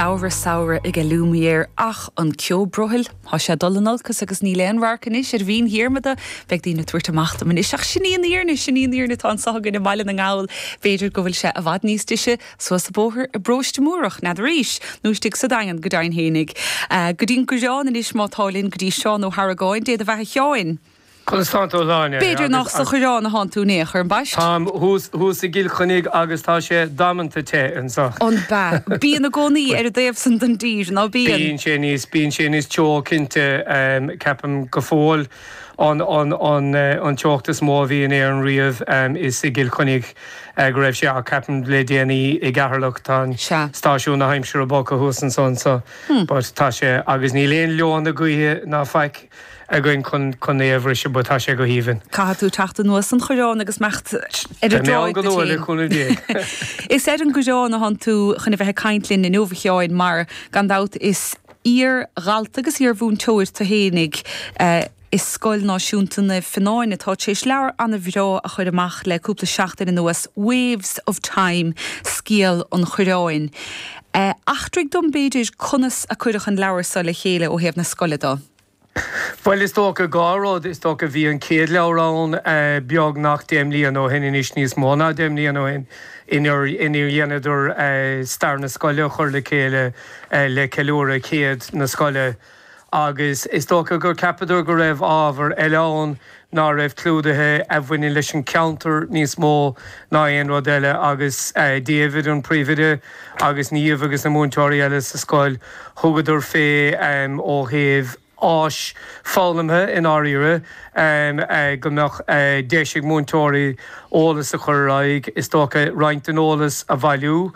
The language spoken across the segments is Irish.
Samhradh, samhradh aige Lumière ach an ceo brothaill. Tá sé ag dul in olcas agus níl aon radharc anois ar Bhinn Diarmada. Beidh daoine ag tabhairt amach dom anois, ach sin í an fhírinne, sin í an fhírinne atá anseo againn i mBaile na nGall. B'fhéidir go bhfuil sé i bhfad níos deise suas an bóthar i bParóiste Múrach, n'fheadar é, nó istigh sa Daingean, go deimhin fhéinig. Go dtí an gCoireán anois, más ea, linn go dtí Seán Ó hArragáin. Dé do bheatha a Sheáin! Conas tánn tú a Shláine? B'fhéidir nach sa Choireán atánn tú in aon chor, ambaist? Táim thuas i gCill Chainnigh agus tá sé damanta te anseo. Ab ea? Bíonn i gcónaí ar an dtaobh san den dtír, ná bíonn? Bíonn sé níos, bíonn sé níos teo cinnte, ceapaim go fóill. An, an, an, an teocht is mó a bhí in Éirinn riamh, is i gCill Chainnigh go raibh sé ach ceapaim le déanaí i gCeatharlach, tá an Sea. stáisiún na haimsire bogtha thuas ansan so but tá sé, agus níl aon leoithne gaoithe ná faic. againn chun é a bhriseadh but tá sé go haoibhinn. Caithfidh tú teacht anuas an Choireáin agus imeacht ar an dtráigh duit fhéin. Is ar an gCoireán athán tú chun a bheith ag caint linn inniu a Sheáin mar, gan dabht, is iar-dhalta agus iar-mhúinteoir tú fhéinig i Scoil Náisiúnta Naomh Fionnáin atá tar éis leabhar an-bhreá a chur amach le cúpla seachtain anuas, Waves of Time, Scéal an Choireáin. Eachtraigh dom, b'fhéidir, conas a cuireadh an leabhar so le chéile ó thaobh na scoile dhe. Bhuel, is dócha dhá rud. Is dócha bhí an chéad leabhar ann beagnach deich mbliana ó shin, anois níos mó ná deich mbliana ó shin, inar dheineadar stair na scoile a chur le chéile le ceiliúradh chéad na scoile. agus is dócha gur cheapadar go raibh ábhar eile ann ná raibh clúdaithe a bhaineann leis an gceantar níos mó ná aon rud eile agus David an príomhoide agus Niamh agus na múinteoirí eile sa scoil thugadar fé ó thaobh áis foghlamtha i ndáiríre go mbeadh deis ag múinteoirí eolas a chur ar aghaidh, is dócha, roinnt den eolas a bhailiú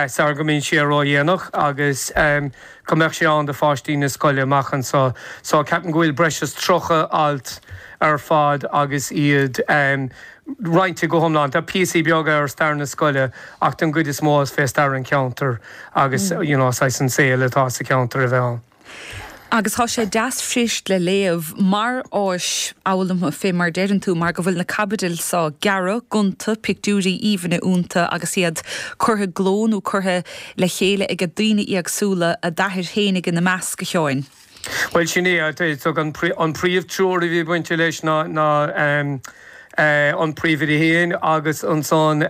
sara go mbíonn sé ródhéanach agus. go mbeadh sé ann do phaistí na scoile amach anseo. So ceapaim go bhfuil breis is tríocha alt ar fad agus iad roinnte go hiomlán. Tá píosaí beaga ar stair na scoile ach don gcuid is mó is fé stair an cheantair agus you know saghas an saol atá sa cheantar a bheith ann. Agus tá sé deas fuirist le léamh mar áis fhoghlamtha fé mar a deireann tú mar go bhfuil na caibidil seo gearra, gonta, pictiúirí aoibhne ionta agus iad curtha i gcló nó curtha i le chéile aige daoine éagsúla, t'athair féinig ina measc, a Sheáin. Bhuel, sin é, is dócha an, an príomh treoir a bhí bainte leis ná, ná an príomhoide féin agus ansan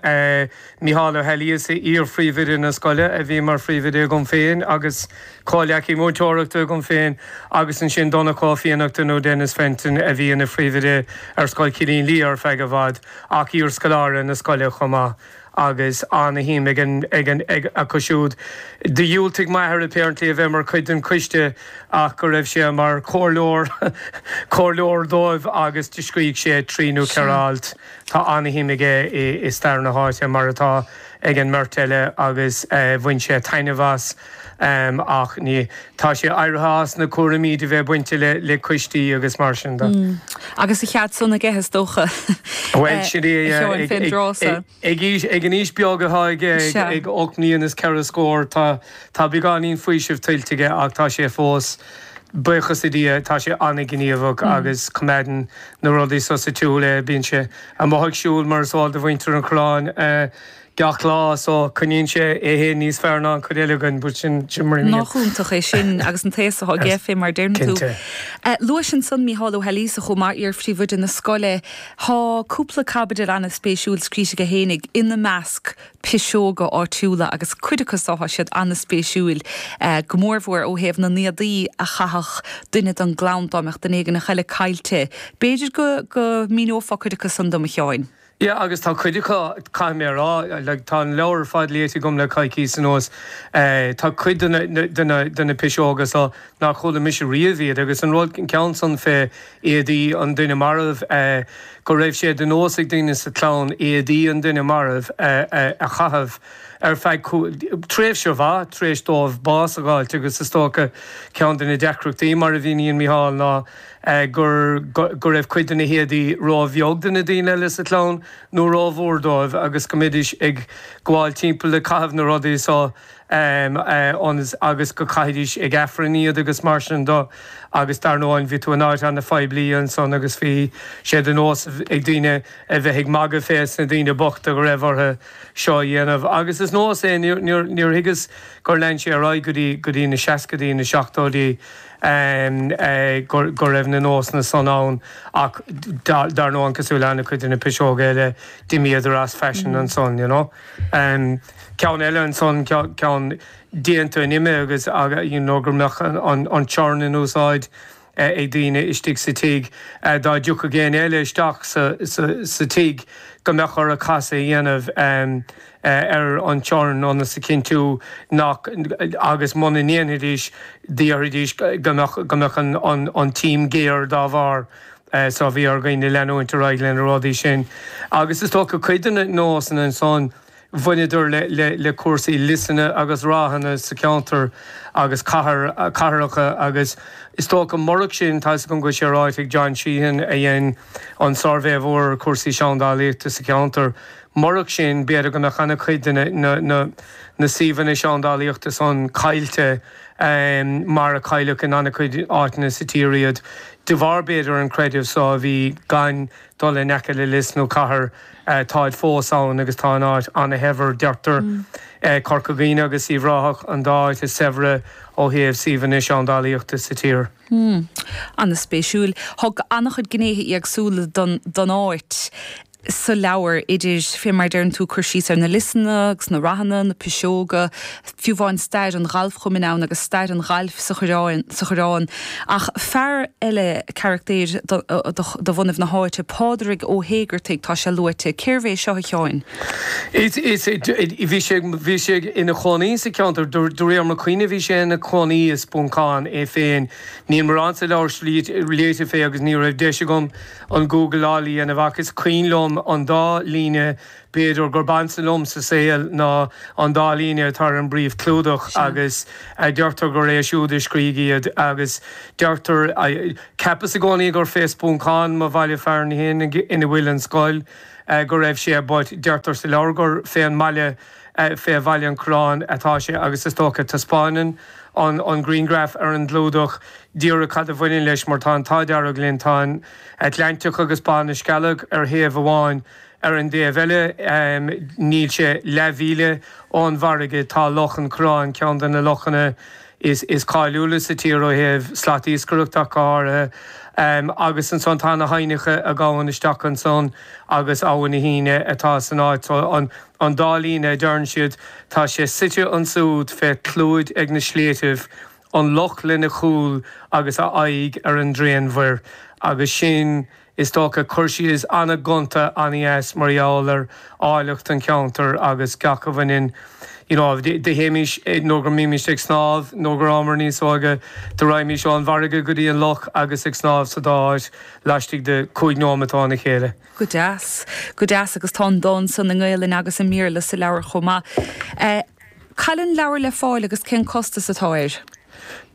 Micheál Ó Laoidhléis, iar-phríomhoide na scoile, a bhí mar phríomhoide agam féin agus comhleacaí múinteoireachta agam féin agus ansin Donncha Ó Fiannachta nó Denis Fenton a bhí ina phríomhoide ar Scoil Chillín Liath ar feadh i bhfad ach iarscoláire na scoile chomh maith. agus an-shuim acu siúd. Do dhiúltaigh m'athair apparently a bheith mar chuid den choiste ach go raibh sé mar chomhairleoir comhairleoir dóibh agus do scrígh sé trí nó ceithre alt. Tá an-shuim aige i stair na háite, mar atá ag an mbeirt eile, agus bhain sé taitneamh as. ach ní, tá sé éirithe as na cúraimí de bheith bainte le, le coistí agus mar sin de. Agus a chead san aige, is dócha. Bhuel, sin é, a Sheáin fén dtráth so. Ag, ag an aois beag atá aige, ag ocht mbliana is ceithre scór, tá, tá beagáinín faoisimh tuillte aige ach tá sé fós, buíochas le Dia, tá sé an-ghníomhach agus coimeádann na rudaí so sa tsiúl é. Bíonn sé amuigh ag siúl mar is eol do mhuintir an Choireáin. gach lá, so coinníonn sé é féin níos fearr ná an chuid eile againn, but sin mar a bhíonn. Nach iontach é sin agus an t-aos atá aige fé mar a deireann tú. Cinnte. Luais ansan Mícheál Ó hAilíosa chomh maith, iar phríomhoide na scoile. Tá cúpla caibidil ana spéisiúil scríte aige fhéinig, ina measc, Piseoga Áitiúla agus cuid acu so tá siad ana spéisiúil, go mór mhór ó thaobh na n-éadaí a chaitheadh duine don gclann dá mbeadh duine éigin eile caillte. B'fhéidir go míneofá cuid acu san dom a Sheáin. Yeah agus tá cuid acu, caithfidh mé a rá, like tá an leabhar ar fad léite agam le coicís anuas, tá cuid de na piseoga so nár chuala mise riamh iad agus an rud, an ceann san fé éadaí an duine marbh, go raibh sé de nós ag daoine sa chlann éadaí an duine marbh a chaitheamh ar feadh tréimhse mhaith tar éis dóibh bás a dh'fháilt agus is dócha ceann de na deacrachtaí mar a mhíníonn Micheál ná gur go raibh cuid de na héadaí róbheag do na daoine eile sa chlann nó rómhór dóibh agus go mbídís ag gabháil timpeall ag caitheamh na rudaí so agus go gcaithidís ag Aifreann iad agus mar sin do agus dar ndóigh bhí tú in áit an-phoiblí ansan agus bhí sé de nós ag daoine a bheith ag magadh fés na daoine bochta go raibh orthu seo a dhéanamh agus is nós é níor thuigeas gur lean sé ar aghaidh go dtí na seascaidí, na seachtóidí. go raibh na nósanna san ann ach dar ndóigh cosúil le ana chuid de na piseoga eile d'imíodar as faisean ansan you know. Ceann eile ansan ceann déanta an ime agus you know go mbeadh an churn in úsáid ag daoine istigh sa tigh dá dtiocfadh éinne eile isteach sa tigh go mbeadh orthu casadh a dhéanamh ar an churn ionas a chinntiú nach agus muna ndéanfaidís déarfaidís go mbeadh go mbeadh an t-im géar dá bharr. So bhí ar dhaoine leanúint ar aghaidh lena rudaí sin. Agus is dócha cuid de na nósanna ansan bhaineadar le le cúrsaí liosanna agus ráthanna sa cheantar agus cathair cathracha agus is dócha murach sin tá 'fhios agam go bhfuil sé ráite ag John Sheehan a dhein an suirbhé mhór ar chúrsaí seandálaíochta sa cheantar Murach sin, b'fhéidir go mbeadh an-chuid de na suíomhanna seandálaíochta san caillte mar a cailleadh in an-chuid áiteanna sa tír iad, de bharr, b'fhéidir, an creideamh so a bhí gan dul in aice le lios nó cathair. Táid fós ann agus tá an áit an-shaibhir, deirtear. Corca Dhuibhne agus Uíbh Ráthach an dá áit is saibhre ó thaobh suíomhanna seandálaíochta sa tír. Hmm. An-spéisiúil. Thug an-chuid gnéithe éagsúla don áit. sa leabhar, idir fé mar a deireann tú, cur síos ar na liosanna agus na rathanna, na piseoga, fiú amháin stair an ghalfchumainn ann agus stair an ghailf sa, sa Choireán. Ach fear eile, carachtaeir de bhunadh na háite, Pádraig Ó hÉigeartaigh, tá sé luaite. Cérbh é seo, a Sheáin? Is, is, bhí sé, bhí sé ina chónaí sa cheantar, de réir mo chuimhne, bhí sé ina chónaí i Spuncán é féin. Níl morán sa leabhar luaite fé agus ní raibh deis agam, an gúgláil a dhéanamh ach is cuimhin liom an dá líne b'fhéidir gurb ansa liom sa saol ná an dá líne atá ar an bpríomhchlúdach agus deirtear gur é siúd a scrígh iad agus deirtear, cheapas i gcónaí gur fé Spuncán mo bhaile fearainn fhéin ina bhfuil an scoil go raibh sé but deirtear sa leabhar gur fé an mbaile Fé Bhaile an Choireáin atá sé agus is dócha taispeánann an grianghraf ar an gclúdach díreach cad a bhaineann leis mar tá an tAdhairg linn, tá an tAtlantach agus Bá na Scealg ar thaobh amháin, ar an dtaobh eile níl sé leathmhíle ón bhfarraige tá Loch an Choireáin, ceann de na lochanna is cáiliúla sa tír ó thaobh slatiascaireachta go háirithe, agus ansan tá na haibhneacha a ghabhann isteach ansan agus Abha na hUíne atá san áit so. An dá líne a deireann siad, tá sé suite ansúd fé chlúid ag na sléibhtibh, an loch lena chúl agus a aghaidh ar an dtréanmhuir, agus sin Is dócha, cur síos an-ghonta, an-deas mar gheall ar áilleacht an cheantair agus gach a bhaineann, you know, do théimís, nuair go mbímís ag snámh, nuair go rabhamar níos óige, do raighmís ón bhfarraige go dtí an loch agus ag snámh sa dá áit laistigh de cúig nóimeat óna chéile. Go deas. Go deas agus tá an dán san i nGaelainn agus i mBéarla sa leabhar chomh maith. Eh. Cá bhfuil an leabhar le fáil agus cén costas atá air?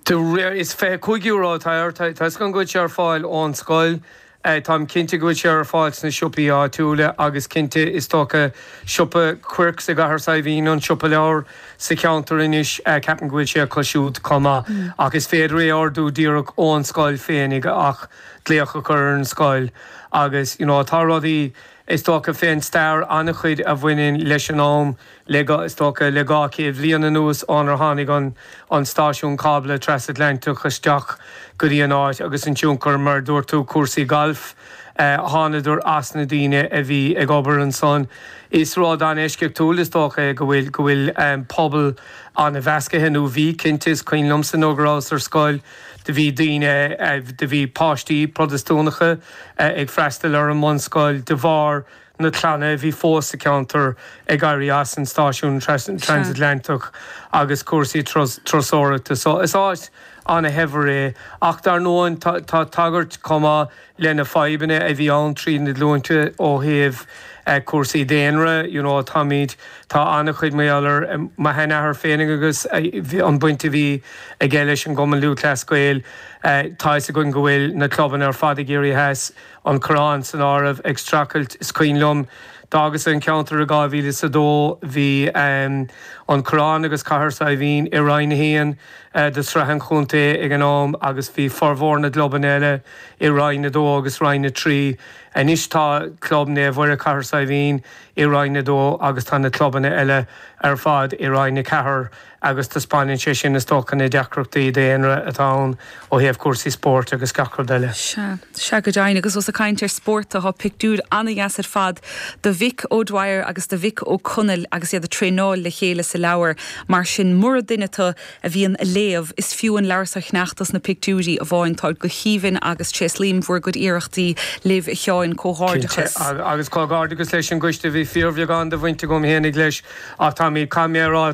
Is €25 atá air. Tuigim go bhfuil sé ar fáil ón scoil, táim cinnte go bhfuil sé ar fáil sna siopaí áitiúla agus cinnte is dócha siopa Quirks i gCathair Saidhbhín an siopa leabhar sa cheantar anois. Ceapaim go bhfuil sé acu siúd chomh maith. Ach is féidir é a ordú díreach ón scoil féinig ach glaoch a chur ar an scoil. Agus you know tá rudaí is dócha fén stair an-chuid a bhaineann leis an am Le go, is dócha, le dhá chéad bhliain anuas ónar tháinig an an stáisiún cábla trasatlantach isteach go dtí an áit agus an tionchar, mar a dúirt tú, cúrsaí gailf, thánadar as na daoine a bhí ag obair ansan. Is rud an-eisceachtúil, is dócha, é go bhfuil, go bhfuil an pobal an-mheascaithe, nó bhí, cinnte, is cuimhin liomsa nuair go rabhas ar scoil, do bhí daoine, do bhí páistí Protastúnacha ag freastal ar an mbunscoil de bharr, na clanna a bhí fós sa cheantar ag éirí as an stáisiún Transatlantic agus cúrsaí turasóireachta. So is áit an-shaibhir é. Ach dar ndóigh tá tagairt chomh maith lena fadhbanna a bhí ann tríd na glúinte ó thaobh cúrsaí daonra, you know, táimid, tá an-chuid mar gheall ar mo sheanathair féinig agus an baint a bhí aige leis an gCumann Lúthchleas Gael. Tá fhios againn go bhfuil na clubanna ar fad i gCiarraí Theas. an Coireán san áireamh, ag streachailt, is cuimhin liom, d'fhágas an ceantar i 2002, bhí an Coireán agus Cathair Saidhbhín i Roinn 1 de Shraith an Chontae ag an am agus bhí formhór na gclubanna eile i Roinn 2 agus Roinn 3. Anois tá Club Naomh Mhuire Cathair Saidhbhín i Roinn 2 agus tá na clubanna eile ar fad i Roinn 4. agus taispeáineann sé sin, is dócha, na deacrachtaí daonra atá ann ó thaobh cúrsaí spóirt agus gach rud eile. Sea. Sea go deimhin. Agus ós ag caint ar spórt, tá pictiúir an-deas ar fad de Mhick O'Dwyer agus de Mhick O'Connell agus iad ag traenáil le chéile sa leabhar, mar sin mura duine tú a bhíonn ag léamh, is fiú an leabhar so a cheannach dos na pictiúirí amháin. Táid go haoibhinn agus tréaslaím bhur gcuid iarrachtaí libh a Sheáin. Cinnte. Comhghairdeachas. Agus comhghairdeachas leis an gcoiste. Bhí fíorbheagán de bhaint agam fhéinig leis. Ach táimid, caithfidh mé a rá,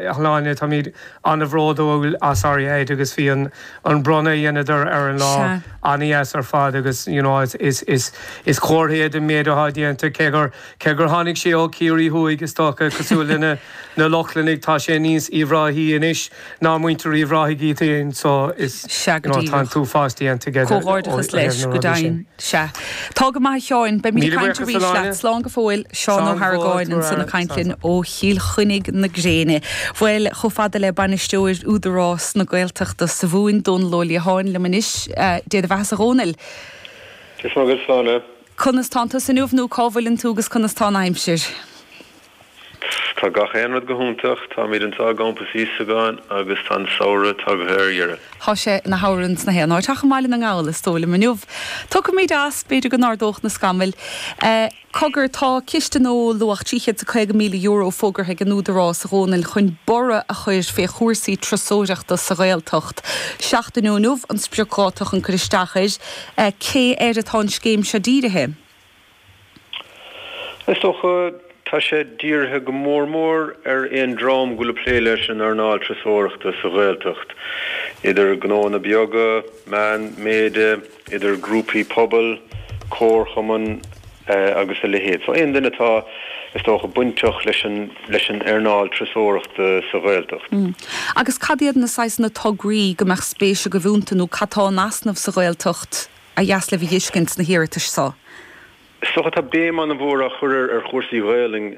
a Shláine, táimid an-bhródúil as ar fad agus bhí an bronnadh a dheineadar ar an lá an-deas ar fad agus you know is comhartha é den méid atá déanta cé gur, cé gur tháinig sé ó Chiarraí thuaidh is dócha, cosúil lena, na Lochlannaigh, tá sé níos Uíbh Ráthaí anois. Ná muintir Uíbh Ráthaigh iad féin so is Sea go you know tá an díreach. t-uafás déanta aige de Comhghairdeachas ó thaobh leis, na go rudaí sin. deimhin. Sea. Tá go maith a Sheáin. Beimid ag Míle caint buíochas a arís leat. Shláine. Slán go fóill. Seán Ó Slán go fóill hArgáin tú ansan ag ara. caint Slán linn slán. ó Chill Chainnigh na gréine. Bhuel, chomh fada le Bainisteoir Údarás na Gaeltachta sa Mhumhain, Dónall Ó Liatháin liom anois. Dé do bheathasa a Dhónaill. Is maith go bhfuil slán. Conas tánn tusa inniu nó cá bhfuileann tú agus conas tá an aimsir? Tá gach aon rud go hiontach. Táimid anseo i gCampas Íosagáin agus tá an samhradh tagtha ar dheireadh. Tá sé ina shamhradh sna haon áit ach i mBaile na nGall, is dóigh liom. Inniu, tiocfaimid as, b'fhéidir go n-ardóidh na scamaill. Cogar, tá ciste nua luach €350,000 fógartha ag an Údarás a Dhónaill chun borradh a chuir fé chúrsaí turasóireachta sa Ghaeltacht. Seachtain ó inniu an spriocdháta chun cur isteach air. Cé air atá an scéim seo dírithe? Is dócha, tá sé dírithe go mór mór ar aon dream go bhfuil ag plé leis an earnáil turasóireachta sa Ghaeltacht, idir gnóanna beaga, meán méide, idir grúpaí pobail, comharchumainn agus a leithéid. So aon duine atá, is dócha, bainteach leis an leis an earnáil turasóireachta sa Ghaeltacht. Agus cad iad na saghsanna tograí go mbeadh spéis agaibh ionta nó cad tá in easnamh sa Ghaeltacht ba dheas libh a fheiscint sna hiarratais seo. Is dócha tá béim an-mhór á chur ar chúrsaí Gaelainne.